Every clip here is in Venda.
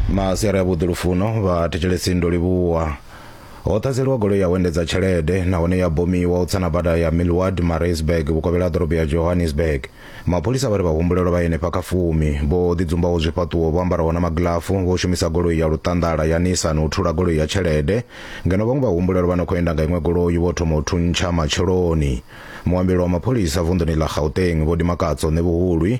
masiari a vhuḓi lufuno vha thetshelesi ndo livhuwa ho ṱhaseliwa goloi ya u endedza tshelede nahone ya bomiwa u tsana bada ya milward marisburg vhukovhela ha ḓorobo ya johannesburg mapholisa vha ri vhahumbulelwa vha henefha kha fumi vho ḓidzumbaho zwifhaṱuwo vho ambaraho na magilafu vho shumisa goloi ya luṱanḓala ya nissan u thula goloi ya tshelede ngeno vhaṅwe vhahumbulelwa vha no khou enda nga iṅwe goloi vho thoma u thuntsha matsheloni muambeli wa mapholisa vunḓuni ḽa gauteng vho dimakatso ṋevhuhulwi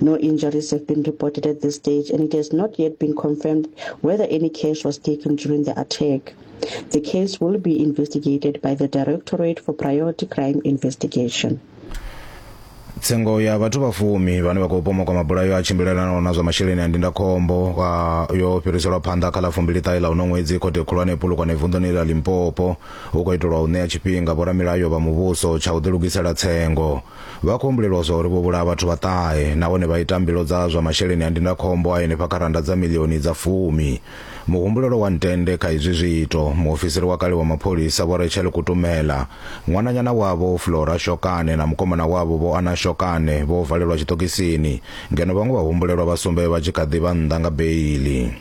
No injuries have been reported at this stage, and it has not yet been confirmed whether any cash was taken during the attack. The case will be investigated by the Directorate for Priority Crime Investigation. tsengo ya vhathu vha fumi vhane vha khou pomoka mabulayo a tshimbilelanaho na zwa masheleni a ndindakhombo ah, yo fhiriselwa phanḓa kha ḽa fumbiliṱahe ḽa uno ṅwedzi khothe khulwane pulukwane vunḓuni ḽa limpopo hu khou itelwa u ṋea tshifhinga vhoramilayo vha muvhuso tsha u ḓilugisela tsengo Vha khou humbulelwa zwa uri vho vhulaha vhathu vha ṱahe nahone vha ita mbilu dza zwa masheleni a ndindakhombo a henefha kha rannda dza miḽioni dza fumi. Muhumbulelo wa ntende kha izwi zwiito, muofisiri wa kale wa mapholisa Vho Rachel Kutumela, ṅwananyana wavho Flora Shokane na mukomana wavho Vho Anna Shokane vho valelwa tshiṱokisini ngeno vhaṅwe vhahumbulelwa vha sumbe vha tshi kha ḓi vha nnḓa nga beiḽi.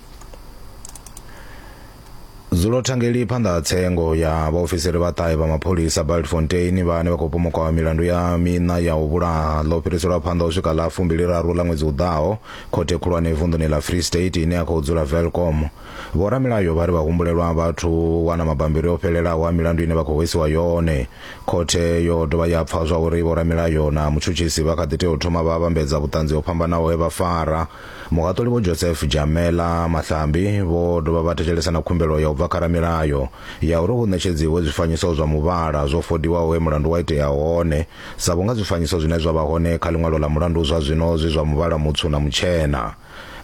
Dzulo thangeli phanḓa ha tsengo ya vhaofisiri vha ṱahe vha mapholisa Bultfontein vhane vha khou pomokaho milandu ya miṋa ya u vhulaha ḽo fhiriselwa phanḓa u swika ḽa fumbiliraru ḽa ṅwedzi u ḓaho khothe khulwane vunḓuni ḽa Free State ine ya khou dzula Velkom. Vhoramilayo vha ri vha humbulelwa vhathu wana mabambiri o fhelelaho a milandu ine vha khou hwesiwa yone. Khothe yo dovha ya pfa zwa uri vhoramilayo na mutshutshisi vha kha ḓi tea u thoma vha vhambedza vhuṱanzi ho fhambanaho he vha fara Muhaṱuli Vho Joseph Jamela Mahlambi vho dovha vha thetshelesa na khumbelo ya u bva kha ramilayo ya uri hu ṋetshedziwe zwifanyiso zwa muvhala zwo fodiwaho he mulandu wa itea hone sa vhunga zwifanyiso zwine zwa vha hone kha ḽiṅwalo ḽa mulandu zwa zwino zwi zwa muvhala mutswu na mutshena.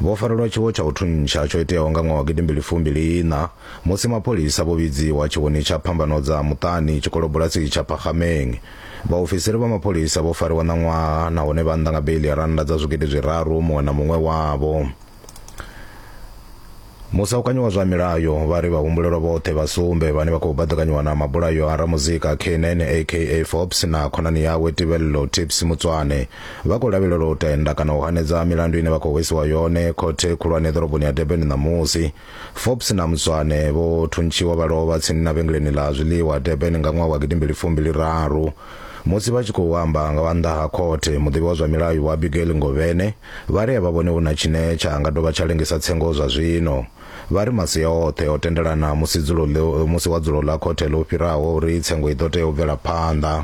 Vho farelwa tshiwo tsha u thuntsha tsho iteaho nga ṅwaha wa gidi mbili fumi mbili iṋa musi mapholisa vho vhidziwa tshiwoni tsha Phambano dza Muṱani tshikolobulasi tsha Phakgameng Vhaofisiri vha mapholisa vho fariwa ṋaṅwaha nahone vha nnḓa nga beiḽi ya rannda dza zwigidi zwiraru muṅwe na muṅwe wavho. Musaukanyi wa zwa milayo vha ri vhahumbulelwa vhoṱhe vha sumbe vhane vha khou baḓekanyiwa na mabulayo a ramuzika Keenan aka Forbes na khonani yawe Tibello Tips Mutswane vha khou lavhelelwa u tenda kana u hanedza milandu ine vha khou hwesiwa yone khothe khulwane ḓoroboni ya Durban ṋamusi. Forbes na Mzwane vho thuntshiwa vha lovha tsini na vhengeleni ḽa zwiḽiwa Durban nga ṅwaha wa gidimbili fumbili raru. Musi vha tshi khou amba nga wa nnḓa ha khothe, muḓivhi wa zwa milayo Vho Abigail Ngovhene vha ri a vha vhoni hu na tshine tsha nga dovha tsha lengisa tsengo zwa zwino. Vha ri masia oṱhe o tendelana musi dzulo musi wa dzulo ḽa khothe ḽo fhiraho uri tsengo i ḓo tea u bvela phanḓa.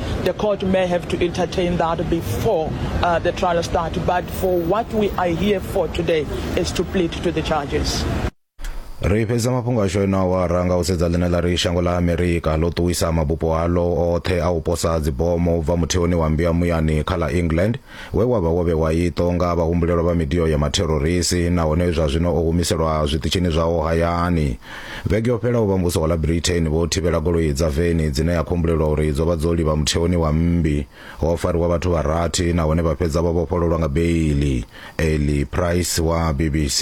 the court may have to entertain that before uh, the trial starts. But for what we are here for today is to plead to the charges. ri fhedza mafhungo ashu eno awara nga u sedza ḽine ḽa ri shango ḽa amerika ḽo ṱuwisa mabupo alo oṱhe a u posa dzibomo u bva mutheoni wa mbiya muyani kha ḽa england we wa vha wo vhewa iṱo nga vhahumbulelwa vha midio ya mathororisi nahone zwa zwino o humiselwa zwiṱitshini zwawo hayani vhege yo fhelaho vha muvhuso wa ḽa britain vho thivhela goloi dza veni dzine ya khumbulelwa uri dzo vha dzo livha mutheoni wa mmbi ho fariwa vhathu vha rathi nahone vha fhedza vha vhofhololwa nga beili eli price wa bbc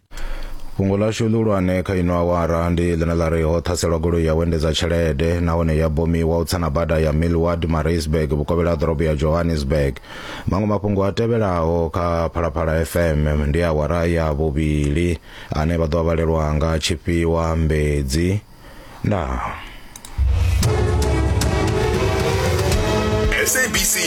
fhungo ḽashu ḽihulwane kha ino awara ndi ḽine ḽa ri ho ṱhaselwa goloi ya vhuendedza tshelede nahone ya bomiwa u tsana bada ya millward marisburg vhukovhela ha ḓorobo ya johannesburg maṅwe mafhungo a tevhelaho kha phalaphala fm ndi awara ya vhuvhili ane vha ḓo a vhalelwa nga tshifhiwa mbedzi ndaa